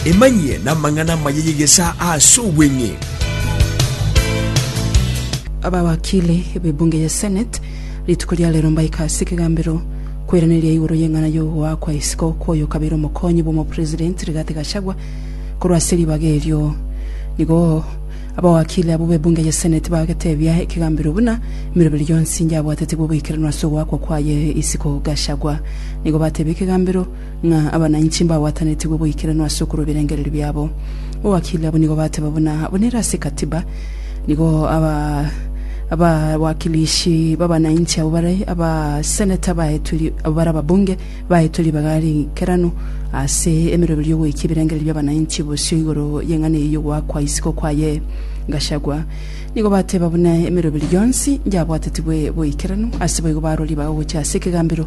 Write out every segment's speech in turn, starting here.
Emanyie namang'ana amaya y'egesaa aase obweng'e. Abawakili b'ebunge ya Senate rituko ria rero mbaika ase ekegambero kweraneria igoro y'eng'ana y'ogoakwa isiko kw'oyo kabere omokonyi bw'omopresident Rigathi Gachagua korwa ase ribaga erio. Nigo abawakili abwo b'ebunge ya Senate bagetebia ekegambero buna emeroberi yonsi yabwatete bw'oboikeranu ase ogoakwa kwaye isiko Gachagua. Nigo batebia ekegambero ng'a abanainchi mbagwatanetigwe boikeranu ase okorwa ebirengererio biabo. Abawakili abwo nigo bateba buna abwo nere ase Ekatiba. Nigo abawakilishi b'abanainchi abwo bare abaseneta baetwe ri- abwo bare ababunge baetwe ribaga riikeranu ase emeroberio y'ogoika ebirengererio bi'abanainchi bosio igoro y'eng'ana eyio y'ogoakwa isiko kwaye Gachagua. Nigo bateba buna emeroberio yonsi yabwatetigwe boikeranu, ase boigo barwa ribaga gochia ase ekegambero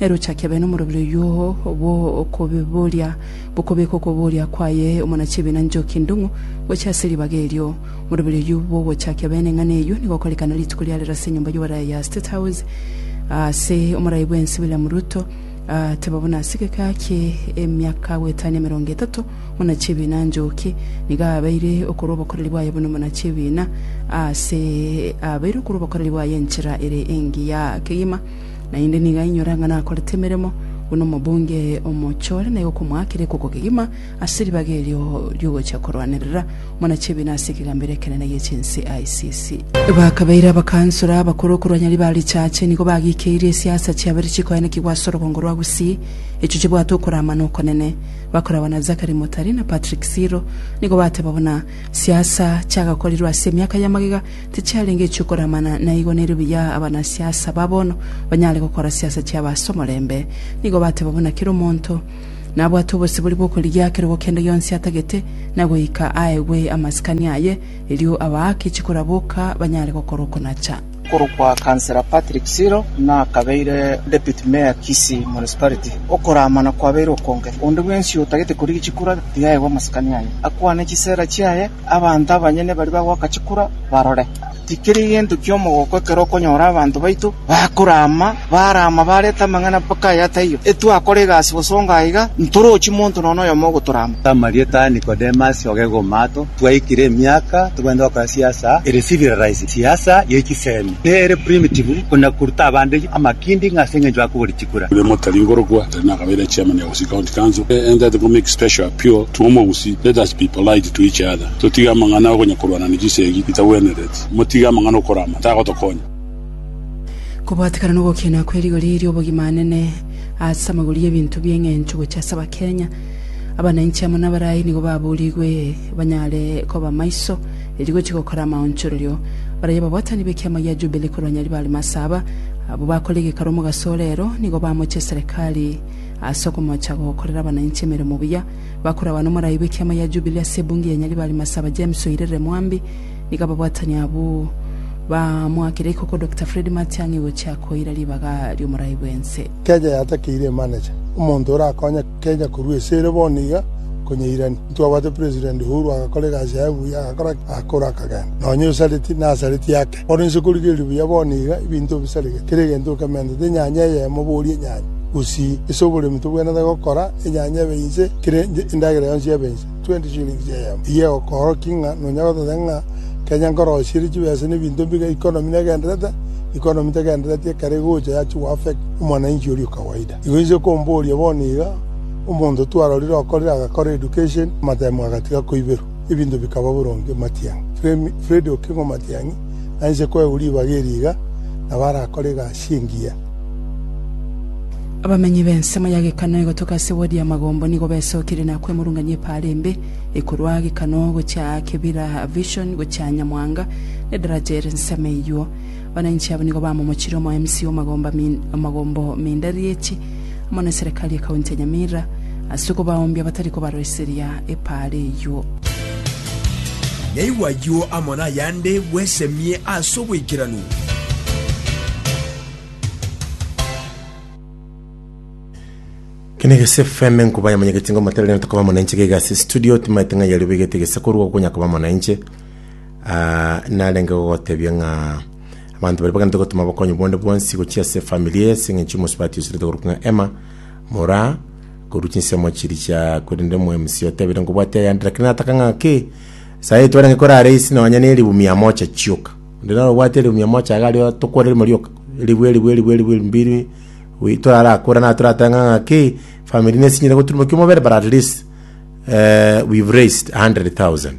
Erochaki abe nomorobio oyio bw'okobiboria, bokobeka okoboria kwaye omonachibiina Njoki Ndung'u gochia ase ribaga erio. Omorobio oyio bw'ogochakia abe neng'ana eyio nigo okorekana rituko ria rero ase enyomba y'oboraya ya State House ase omorai bwensi William Ruto ateba buna ase egeka kie emiaka goetania emerongo etato omonachibiina Njoki nigo abeire okorwa obokoreri bwaye buna omonachibiina ase abeire okorwa obokoreri bwaye enchera ere engiya kegima Naende nigo ainyora ng'a nakorete emeremo buna omobunge eye omochore, na igo komoakera ekoko kegima ase ribaga erio ri'ogochia korwanerera omonachebina ase ekegambero ekenene gie chinse ICC. Bakabeire abakansora abakoro okorwanya ribaga richache, nigo bagikeirie esiasa chiabere chikoenekigwa ase orogongo rwa Gusii, echio chibwate okoramana okonene. Bakoragwa na Zachary Mutari na Patrick Siro nigo bateba buna, Siasa chiagakorirwe ase emiaka y'amagega, Tichiarenge echiokoramana, na igo nerio buya abanasiasa ba bono banyare gokora siasa chiabo ase omorembe. Nigo bateba buna kera omonto nabwate obosibori bw'okorigia kerogo kende gionsi atagete, na goika aegwe amasikani aye, erio abaake chikura boka banyare gokora okonacha. Okorokwa Councillor Patrick Siro nakabeire Deputy Mayor Kisii Municipality. Okoramana kwabeire okonge. Onde bwensi otagete korigia chikura tiga aegwe amasikani aye, akwane chisera chiaye. Abanto abanyene baria bagoaka chikura barore. Tikeri gento ki'omogoko ekero okonyora abanto baito bakorama, barama barete amang'ana mpaka aya taiyo. Etwakora egasi bosongo aiga, ntorochi monto nonya noyomo ogotorama. Samaria tari Nikodemasi oge gomato twaikire emiaka togwende gokora siasa ere civilirize, siasa ye chisemi, ne ere primitive, buna koruta abande amakindi ng'a ase engencho ya kobori chinguru. William Otari nkorokwa, Otari nakabeire chairman ya Gusii County Council. E entate ko make special appeal to omogusii, let us be polite to each other, totige amang'ana akonya korwana ne chisegi chitagwenereti, motige amang'ana okora amo tagotokonya. Kobwatekana nogokiena kwe rigori riobogima anene ase amagoro y'ebinto bi'eng'encho gochia ase Abakenya, abananchi amo nabarai nigo baburigwe banyare koba maiso erio gochia gokora amaonchorerio. Barabwo ababwatani b'ekiama gia Jubili korwa Nyaribo Alimasi aba, abwo bakore egekaro omogaso ore ero, nigo bamocha eserekari ase okomocha gokorera abananchi emeremo buya. Bakore abana omorai bw'ekiama gia Jubili ase ebunge ya Nyaribo Alimasi aba James Oirerere Mwambi, nigo ababwatani abwo bamoakire ikoko Dokita Fred Matiang'i gochia koira ribaga ri'omorai bw'ense. Keeja yatakeire emaneja, omonto orakonye. Kenya korwa ase ere bono iga nkonyeirani. Ntwabwate President Uhuru agakora egasi yaye buya, agakora ki? Agakora akagenda nonya Osareti na Nasareti yake. Bono inse korigereria buya bono iga ebinto obisaregete, kera egento okementete enyanya eyemo boria enyanya, gusii ase oboremi tobwenerete gokora enyanya ebe inse, kera endagera yonsi ebe inse, 20 shillings eyemo. Eyio egokoorokia ng'a nonya gototeba ng'a Kenya nkorosirie chibesa na ebinto mbiga, economy negenderete? Economy tegendereti ekero egocha yachia goaffect omwananchi oria o kawaida. Igo inche komboria bono iga, omonto twarorire okorire agakora education, amatemo agatiga koiberwa, ebinto bikaba boronge matiang'i. Freddy Okingo matiang'i, na inche koegwa ribaga eri iga, nabo arakore egasi engiya. Abamenyi b'ensemo ya Gekano egotoka ase ward ya Magombo nigo besokire na kwemurungania epaara embe ekorwa Gekano gochia aa Kibira Vision gochia Nyamwanga nedaraja ere nsemo eyuo. Abananchi abo nigo bamomochire omo MC omagomba omagombo Mindarieti amo ne Serekari ye County ya Nyamira ase okobaoombia batari kobaroiseria epaara eyio. Naigwe ayio amo nayande bwesemie ase oboikeranu. Kene egese FM enkuba ya monyegeti ngomoterere ntokoba monenche gaiga ase studio timaete ng'ai ario baigete gese korwa gokonya koba monenche narenge gogotebia ng'a abanto baria baganete gotoma obokonyi bonde bwonsi gochia ase efamiri ase eng'encho chimosi batiuserete korokwa ng'a Emma mora korwa chinsemo chiria chia korende omwemusi otebire nkobwate ayande lakini nataka ng'a ki saii twarenge korare isi nonya ne elifu mia moja chioka onde naro obwate elifu mia moja iga ario tokore rimo rioka elifu elifu elifu elifu mbiri wi- torarakore na toratebe ng'a ng'a ki efamiri nesinyire goturuma kia omobere but at least eh, we've raised a hundred thousand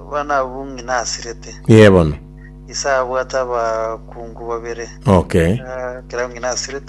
Abana abwo ng'ina asirete. Ee bono. Ise abwate abakungu babere. Okay. Ekero ng'ina asirete.